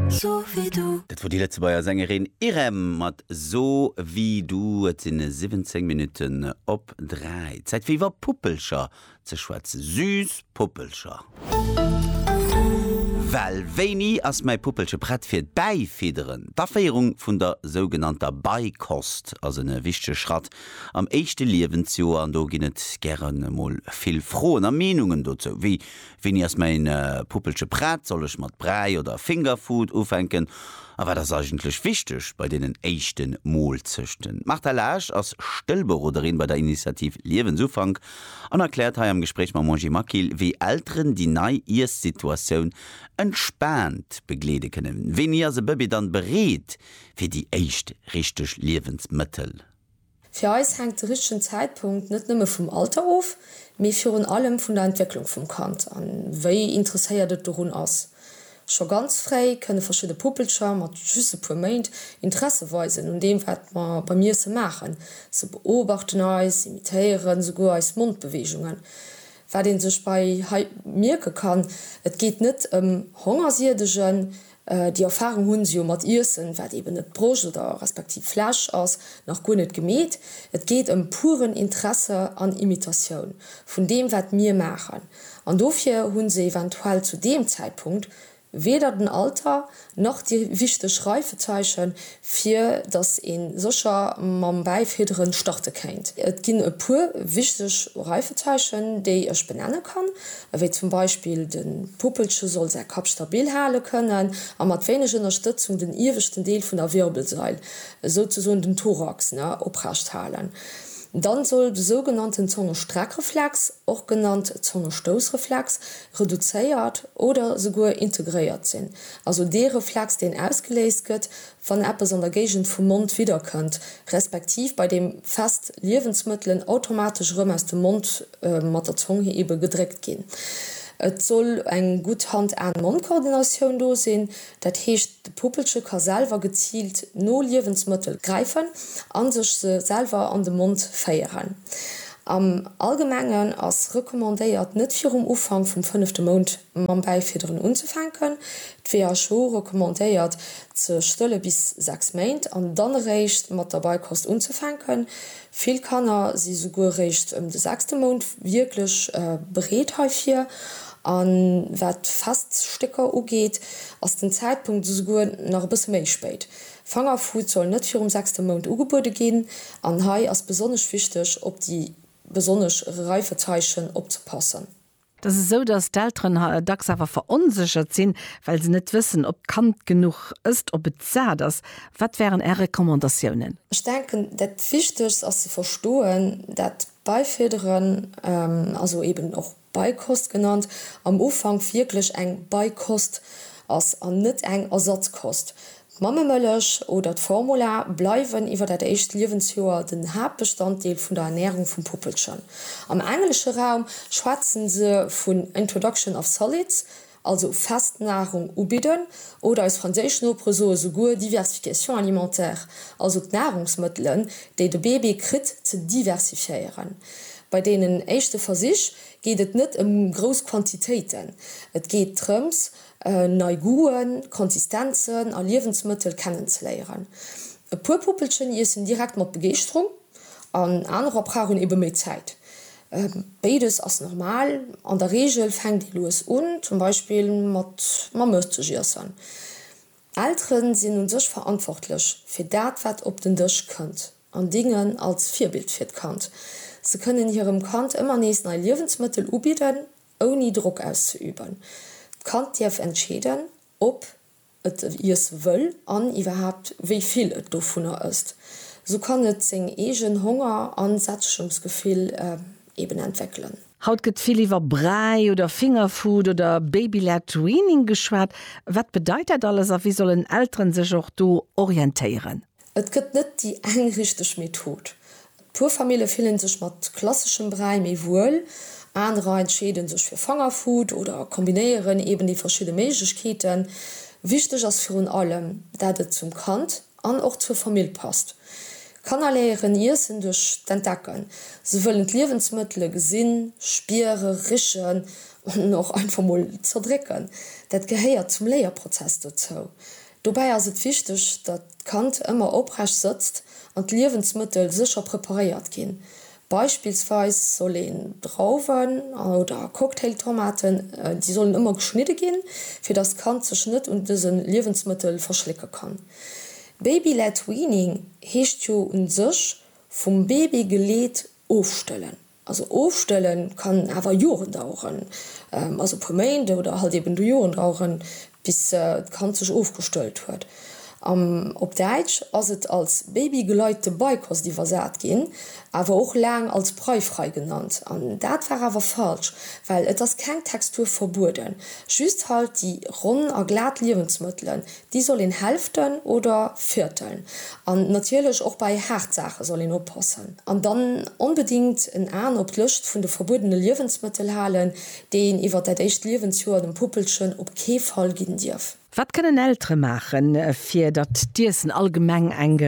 So wie du. Dat wor déi Lëtzebuerger Sängerin Irem mat So wie du. Et sinn 17 Minutten op 3. Zäit fir iwwer Puppelcher ze schwätzen. Süss Puppelcher. Well wéini ass mäi Puppelche prett fir d'Bäifidderen? D'Aféierung vun der sougenannter Beikost ass e wichtege Schratt am éischte Liewensjoer an do ginn et gäre mol vill Froen a Meenungen dozou. Wéi Wéini ass mäin Puppelche prett? Soll ech mat Bräi oder Fingerfood ufänken? A wat ass eigentlech wichteg bei deenen éischte Moolzechten? D'Martha Laasch ass Stëllberoderin bei der Initiativ Liewensufank an erkläert hei am Gespréich mam Angie Maquil, wéi Elteren déi nei Iessituatioun entspaant begleede kënnen. Wéini ass e Bëbee dann bereet fir déi éischt richteg Liewensmëttel? Fir eis hänkt de richtegen Zäitpunkt net nëmme vum Alter of, mee virun allem vun der Entwécklung vum Kand a wéi interesséiert et dorun ass. Scho ganz fréi kënne verschidde Puppelcher mat just e puer Méint Interesse weisen un deem, wat mer beim Iesse maachen. Se beobachten eis, imitéieren esouguer eis Mondbeweegungen. Wat ee sech bei hei mierke kann, Et geet net ëm Hongersiedegen. Déi Erfahrung hunn se jo mat Iessen, wat eben net Broscht oder respektiv Flesch ass, nach guer net gemeet. Et geet ëm puren Interesse an Imitatioun vun deem, wat mir maachen. An dofir hunn se eventuell zu deem Zäitpunkt weder den Alter, nach déi wichteg Reifezeichen, fir dass een sécher mam Bäifiederen starte kéint. Et ginn e puer wichteg Reifezeichen, déi ech benenne kann, ewéi zum Beispill, de Puppelche soll säi Kapp stabil hale kënnen a mat wéineg Ënnerstëtzung den ieweschten Deel vun der Wirbelsail, souzesoen den Thorax, oprecht halen. Dann soll de sougenannten Zongestreckreflex och genannt Zongestoussreflex, reduzéiert oder souguer integréiert sinn, also dee Reflex, deen ausgeléist gëtt, wann eppes an der Géigend vum Mond widderkënnt, respektiv bei deem fest Liewensmëttelen automatesch erëm aus dem Mond mat der Zong hir ebe gedréckt ginn. Et soll eng gutt Hand-Aen-Mond-Koordinatioun do sinn, Dat heescht, de Puppelche ka selwer geziilt no Liewensmëttel gräifen a sech se selwer an de Mond féieren. Am Allgemengen ass recommandéiert, net virum Ufank vum fënnefte Mount mam Bäifidderen unzefänken. D'WHO recommandéiert, ze stëlle bis 6 Méint an dann eréischt mat der Beikost unzefänken. Vill Kanner si souguer réischt ëm de sechste Mount wierklech bereet heifir. A wat d'Feststécker ugeet, ass den Zäitpunkt esouguer nach e bësse méi spéit. Fangerfood soll net virum sechste Mount ugebuede ginn an hei ass besonnesch wichteg, op déi besonnesch Reifezeichen opzepassen. Et ass esou, dass d'Elteren dacks awer veronséchert sinn, well se net wëssen, ob d'Kand genuch ësst, ob et sat ass. Wat wären Är Recommandatiounen? Ech denken, dat Wichtegst ass ze verstoen, dat Beifidderen, also eben och Beikost genannt, am Ufank wierklech eng Beikost ass an net eng Ersatzkost. D'Mammemëllech oder d'Formula bleiwen iwwer dat éischt Liewensjoer den Haaptbestanddeel vun der Ernärung vum Puppelchen. Am englesche Raum schwätze se vun introduction of solids, also fest Nahrung ubidden, oder eis franséisch Nopere soe souguer diversification alimentaire, also d'Nahrungsmëttelen, déi de Bébé kritt, ze diversifiéieren. Bei deenen éischte Versich geet et net ëm grouss Quantitéiten, et geet drëms, nei Goûten, Konsistenzen a Liewensmëttel kennenzeléieren. E puer Puppelchen iessen direkt mat Begeeschterung an anerer brauchen ebe méi Zäit. Béides ass normal. An der Reegel fänkt ee lues un, zum Beispill mat mam Mëttgiessen. Eltere sinn u sech verantwortlech fir dat, wat op den Dësch kënnt an dingen als Virbild fir d'Kand. Se kënnen hirem Kand ëmmer nees nei Liewensmëttel ubidden Ouni Drock auszeüben. D'Kand dierf entscheeden, ob et iesse wëll an iwwerhaapt wéi vill et dovunner ësst. Sou kann et seng eegen Honger a Sättegungsgefill eben entwéckelen. Haut gëtt vill iwwer Bräi oder Fingerfood oder Baby-led Weaning geschwat. Wat bedeit dat alles a wéi sollen Elteren sech och do orientéieren? Et gëtt net déi eng richteg Method. Puer Famille fillen sech mat klasseschem Bräi méi wuel, anerer entscheeden sech fir Fangerfood oder kombinéieren eben déi verschidde Méiglechkeeten. Wichteg ass virun allem, dat et zum Kand an och zur Famill passt. Kanner léieren Iessen duerch d'Entdecken. Se wëllen d'Liewensmëttele gesinn, spiere, richen an och einfach mol zerdrécken. Dat gehéiert zum Léierprozess dozou. Dobäi ass et wichteg, datt d'Kand ëmmer oprecht sëtzt an d'Liewensmëttel sécher preparéiert ginn. Beispillsweis soll een Drauwen oder Cocktailtomaten, déi sollen ëmmer geschnidde ginn, fir datt d'Kand sech net un dëse Liewensmëttel verschlécke kann. Baby-led weaning heescht jo u sech vum Baby geleet ofstëllen. Also ofstëlle kann awer Joren daueren, also e puer Méint oder halt eben du Joren daueren, bis d'Kand sech ofgestëllt huet. Op Däitsch ass et als babygeleitete Beikost iwwersat ginn, awer och laang als breifrei genannt. An dat war awer falsch, well et ass keng Textur verbueden, just halt déi ronn a glat Liewensmëttelen, Déi soll een hälften oder vierteln. An natierlech och bei haart Saache soll een oppassen. An dann onbedingt en Aen op d'Lëscht vun de verbuedene Liewensmëttel halen, déi een iwwert dat éischt Liewensjoer dem Puppelchen op kee Fall ginn dierf. Wat kënnen Eltere maachen, fir datt d'Iessen allgemeng eng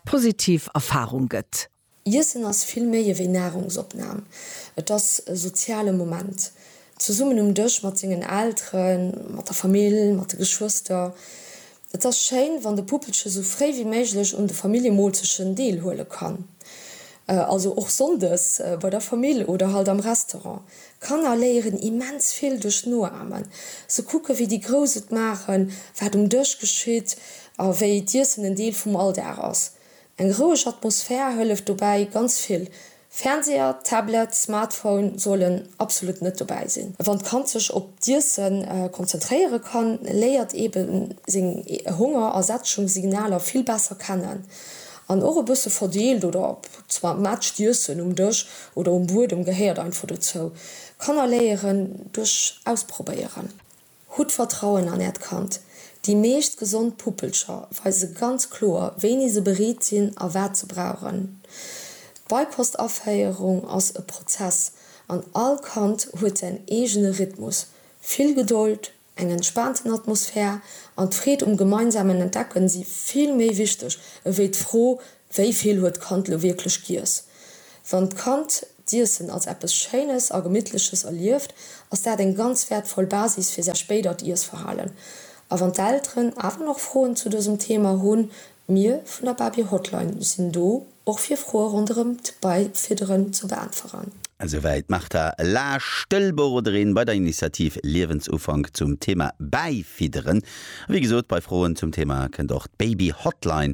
positiv Erfarung gëtt? Iessen ass vill méi ewéi Nahrungsopnahm. Et ass e soziale Moment, zesummen um Dësch mat sengen Elteren, mat der Famill, mat de Geschwëster. Et ass schéin, wann de Puppelche sou fréi wéi méiglech un de Familljemoolzechen deelhuele kann, also och sonndes bei der Famill oder halt am Restaurant. Kanner léieren immens vill duerch Noamen. Se kucken, wéi déi Grouss et maachen, wat um Dësch geschitt a wéi d'Iessen en Deel vum Alldag ass. Eng roueg Atmosphär hëlleft dobäi ganz vill. Fernseher, Tablet, Smartphone sollen absolut net dobäi sinn. Wann d'Kand sech op d'Iesse konzentréiere kann, léiert ebe seng Honger a Sättegungssignaler vill besser kennen. An och e bësse verdeelt oder matcht Iessen um Dësch oder um Buedem gehéiert einfach dozou. Kanner léieren duerch Ausprobéieren. Hutt Vertrauen an äert Kand. Déi meescht gesond Puppelcher weise ganz kloer, wéini se bereet sinn a wat se brauchen. D'Beipost-Aféierung ass e Prozess an all Kand huet säin eegene Rhythmus. Vill Gedold, eng entspaanten Atmosphär an d'Freed um gemeinsamen Entdecken si vill méi wichteg ewéi d'Fro, Wéi vill huet d'Kand elo wierklech giess? Wann d'Kand d'Iessen als eppes Schéines a Gemittleches erlieft, ass dat eng ganz wäertvoll Basis fir säi spéidert Iessverhalen. A wann d'Elteren awer nach Froen zu dësem Thema hunn, mir vun der Babie Hotline sinn do, och fir Froe ronderëm d'Beifidderen ze beäntweren. Esouwäit d'Martha Laasch, Stëllberoderin bei der Initiativ Liewensufank zum Thema Bäifidderen. A wéi gesot, bei Froen zum Thema kënnt och d'Baby Hotline